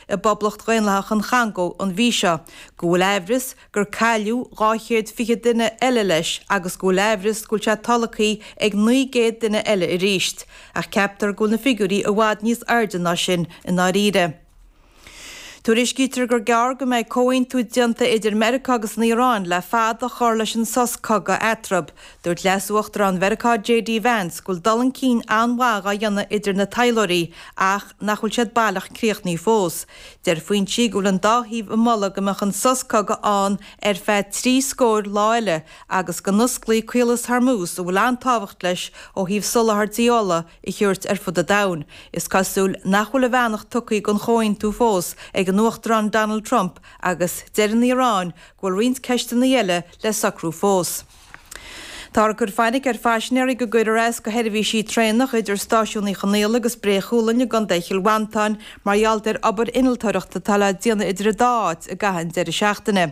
i bPoblacht Dhaonlathach an Chongó an mhí seo, go bhfuil aimhreas gur cailleadh dhá chéad fiche duine eile leis agus go bhfuil aimhreas go bhfuil sé tolgthaí ag naoi gcéad duine eile arís, ach ceaptar go bhfuil na figiúirí i bhfad níos airde ná sin i ndáiríre. Tuairiscítear gur gearr go mbeidh comhaontú déanta idir Meiriceá agus an Iaráin le fad a chur leis an sos cogaidh eatarthu. Dúirt Leas-Uachtarán Mheiriceá JD Vance go bhfuil dul chun cinn an-mhaith á dhéanamh idir na taidhleoirí ach nach bhfuil siad baileach críochnaithe fós. Deir foinsí go bhfuil an dá thaobh ag moladh go mbeadh an sos cogaidh ann ar feadh trí scór lá eile agus go n-osclaí Caolas Hormuz a bhfuil an-tábhacht leis ó thaobh soláthairtí ola a thabhairt ar fud an domhain. Is cosúil nach bhfuil a bheannacht tugtha don chomhaontú fós ag an Uachtarán Donald Trump agus deir an Iaráin go bhfuil roinnt ceisteanna eile le socrú fós. Táthar ag cur fainic ar phaisinéirí go gcuirfear as go sheirbhísí traenach idir Stáisiún Uí Chonaola agus Bré Chualainn i gContae Chill Mhantáin mar gheall ar obair innealtóireachta atá le déanamh idir an dá áit i gcaitheamh an deireadh seachtaine,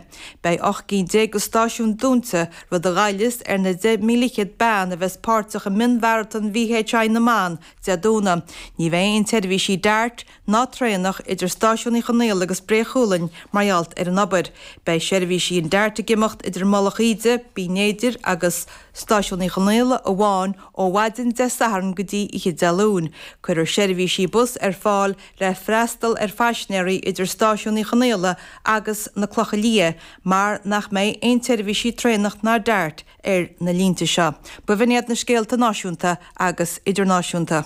beidh 18 gcinn de stáisiúin dúnta, rud a ghoillfeas ar na 30,000 bean a bheas páirteach i mionmharatón VHI na mBan, Dé Domhnaigh. Ní bheidh aon tseirbhísí dart, ná traenach idir Stáisiún Uí Chonaola agus Bré Chualainn mar gheall ar an obair. Beidh seirbhísí an dart ag imeacht idir Mullach Íde, Binn Éadair agus Stáisiún Uí Chonaola amháin ó mhaidin Dé Sathairn go dtí oíche Dé Luain. Cuirfear seirbhísí bus ar fáil le freastal ar phaisinéirí idir Stáisiún Uí Chonaola agus na Clocha Liath mar nach mbeidh aon tseirbhísí traenach ná dart ar na línte seo. B'in iad na scéalta náisiúnta agus idirnáisiúnta.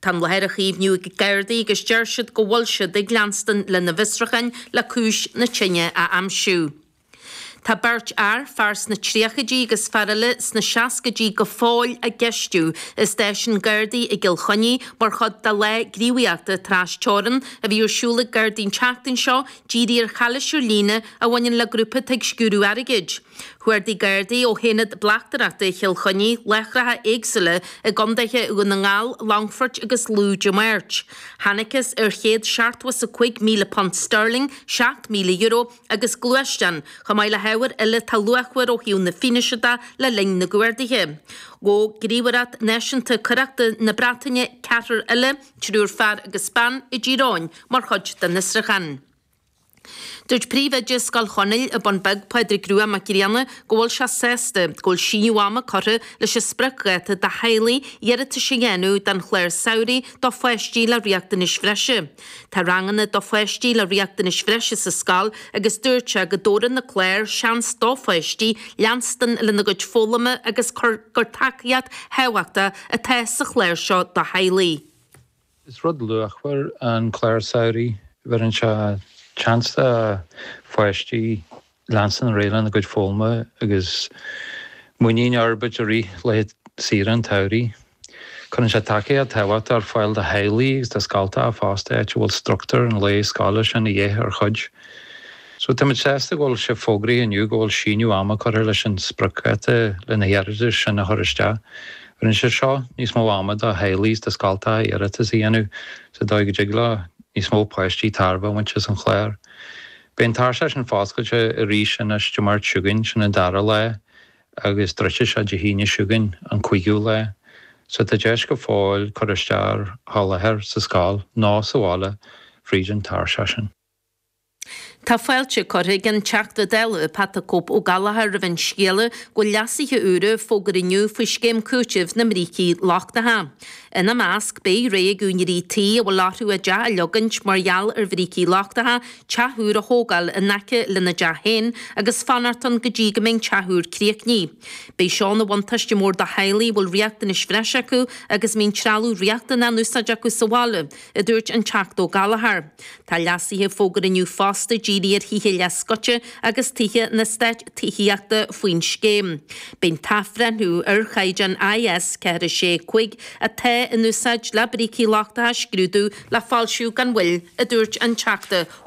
Tá an láthair á caomhnú ag Gardaí agus deir siad go bhfuil siad ag leanstan lena bhfiosrúcháin le cúis na tine a aimsiú. Tá beirt fhear, fear sna tríochaidí agus fear eile sna seascaidí go fóill á gceistiú i stáisiún Gardaí i gCill Chainnigh mar chuid de lá gníomhaíochta tras-teorann a bhí ar siúl ag Gardaí an tseachtain seo dírithe ar chalaois ar líne a bhaineann le grúpa atá ag sciúradh airgid. Chuardaigh Gardaí ó hAonad Bleachtaireachta Chill Chainnigh láithreacha éagsúla i gCondaetha Dhún na nGall, Longfoirt agus Lú Dé Máirt. Thángthas ar £175,000 Sterling, €7,000, agus gluaisteán, chomh maith le hábhair eile atá luachmhar ó thaobh na fianaise de, le linn na gcuardaithe. Ghabh Gníomhaireacht Náisiúnta Coireachta na Breataine ceathrar eile, triúr fear agus bean, i dTír Eoghain mar chuid den fhiosrúchán. Dúirt Príomhoide Scoil Chonaill An Bun Beag Pádraig Rua Mac Grianna go bhfuil sé sásta go bhfuil síneadh ama curtha leis an spriocdháta do theaghlaigh iarratais a dhéanamh don chlár samhraidh do pháistí le riachtanais bhreise. Tá ranganna do pháistí le riachtanais bhreise sa scoil agus dúirt sé go dtabharann na cláir seans do pháistí leanstan lena gcuid foghlama agus gur tacaíocht thábhachtach atá sa chlár seo do theaghlaigh. Is rud luachmhar an clár samhraidh. Bheireann sé seans do pháistí leanstan ar aghaidh le a gcuid foghlama agus muinín a fhorbairt i rith laetha saoire an tsamhraidh. Cuireann sé tacaíocht thábhachtach ar fáil do theaghlaigh agus do scoltacha fosta áit a bhfuil structúr an lae scoile sin de dhíth ar chuid. So táimid sásta go bhfuil sé fógraithe inniu go bhfuil síneadh ama curtha leis an spriocdháta leis na hiarratais sin a chur isteach. Bheireann sé seo níos mó ama do theaghlaigh is do scoltacha iarratas a dhéanamh sa dóigh go dtig leo níos mó páistí tairbhe a bhaint as an chlár. Beidh an tairseach sin foscailte arís anois Dé Máirt chugainn, sin an dara lá, agus druidfidh sé Dé hAoine chugainn, an cúigiú lá. So tá deis go fóill cur isteach ar sholáthar sa scoil nó sa bhaile fríd an tairseach sin. Tá fáilte curtha ag an Teachta Dála Pat 'The Cope' Ó Gallchóir roimh an scéala go bhfuil leasuithe úra fógartha inniu faoi Scéim Cúitimh na mBrící Lochtacha. Ina measc, beidh sé ag úinéirí tí a bhfuil orthu a dteach a leagaint mar gheall ar bhrící lochtacha, teach úr a thógáil in aice lena dteach féin agus fanacht ann go dtí go mbeidh an teach úr críochnaithe. Beidh seo ina bhuntáiste mór do theaghlaigh a bhfuil riachtanais bhreise acu agus a mbíonn trealamh riachtanach in úsáid acu sa bhaile. a dúirt an Teachta Ó Gallchóir. Tá leasuithe fógartha inniu fosta dírithe ar thithe leathscoite agus tithe na n-eastát tithíochta faoin scéim. Beidh an t-athbhreithniú ar chaighdeán IS 4 6 5 atá in úsáid le brící lochtacha a scrúdú le foilsiú gan mhoill, a dúirt an Teachta Ó